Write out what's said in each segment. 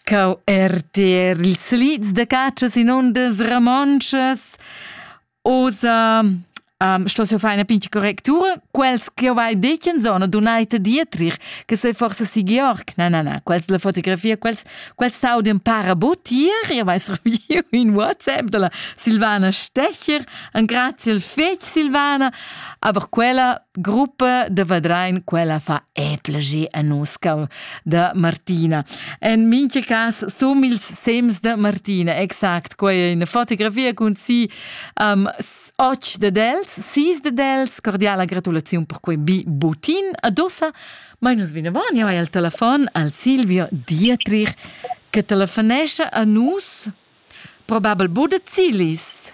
Cau erter ils lids da catschas in ondas ramontschas. Osa um, sto se fai una pinta correctura, quels che vai decen zona donaita dietrich, che se forse si Georg, na na na, quels la fotografia, quels, quels saudien para botier, io vai serviu in WhatsApp dalla Silvana Stecher, an grazie al fec Silvana, Aber quella gruppa de Vadrein, quella fa eplegi a nus, cau da Martina. En minche cas som ils sems de Martina, exact, quei è una fotografia con si um, och de dels, sis de dels, cordiala gratulazione per quei bi butin adossa, ma nus vinavon, ja vai al telefon al Silvio Dietrich, che telefonesce a nus, probabel bude Zilis.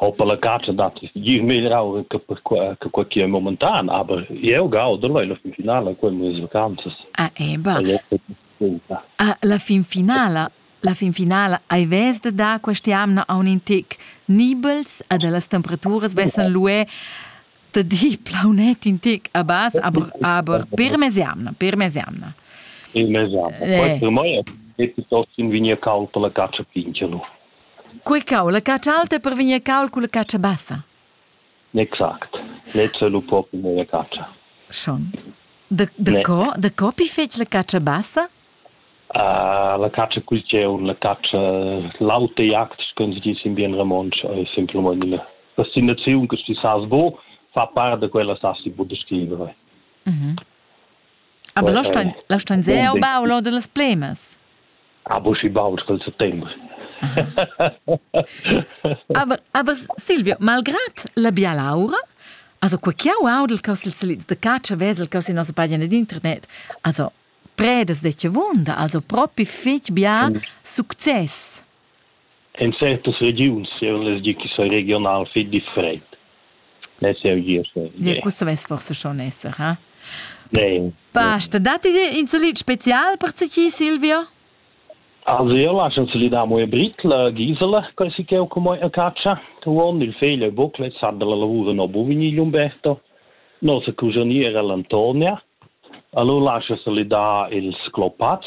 Auch per la catscha dat gir meglier aura che per quella che quei che è momentan, aber eu gaudo leu la fin finala con mes vacanzas. Ah, eba. Ah, la fin finala, la fin finala hai ves de dar questa amna a un intic nibels a de las temperaturas vessen lué de di plaunet intic a bas, aber aber per mesiamna, per mesiamna. Il mesiamna. Eh. Per me è tutto in vigna calda la caccia pinchelo. Quei cau, la catscha alta per vegnir cau culla catscha bassa. Exact. Lezza lu propi la catscha. Schon. Da, da Ne. co, da co pi fetg la catscha bassa? Uh, la catscha cul tgeu, la catscha, l'auta jagd, con si dice in bien romontsch, è semplament una destinazione che si sa bo, fa parte da quella sa si può descrivere. Mhm. Ah, la stein, la stein sehr o bau lo de las plemas. Ah, bu si bau col settembre. aber, aber Silvia, malgrat la bialaura, also qua chiau audel cos ils salids de caccia vesel cos in nossa pagina d'internet, also predes de che vunda, also propi fetg bia success. En certas regiuns jeu less dir ch'i sei regional fetg freid. Less jeu gir. Ja, questo vess forse schon esser, ha? Nein. Basta, datti dir in salit spezial per ti, Silvio? Also io lascio se gli damo e britla gisela che si che come a caccia tuon il feglia bocle sa della lavora no bovini Umberto no se cusaniera l'Antonia allora lascio se gli da ils clopats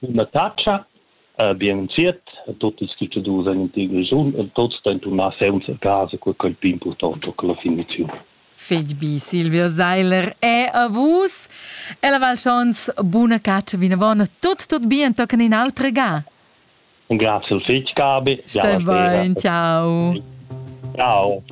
Üna tacha, bien inviert a tuot ils cuschadurs in l'intera regiun e tots stain turnar sainza casa cur quai pi important ho che la finiziun. Fich bi, Silvio Seiler, è a vus. E la Val Schons, buna caccia vinavon, tut tut bien, toccan in autra ga. Grazie al fich, Gabi. Stai bain, ciao. Ciao.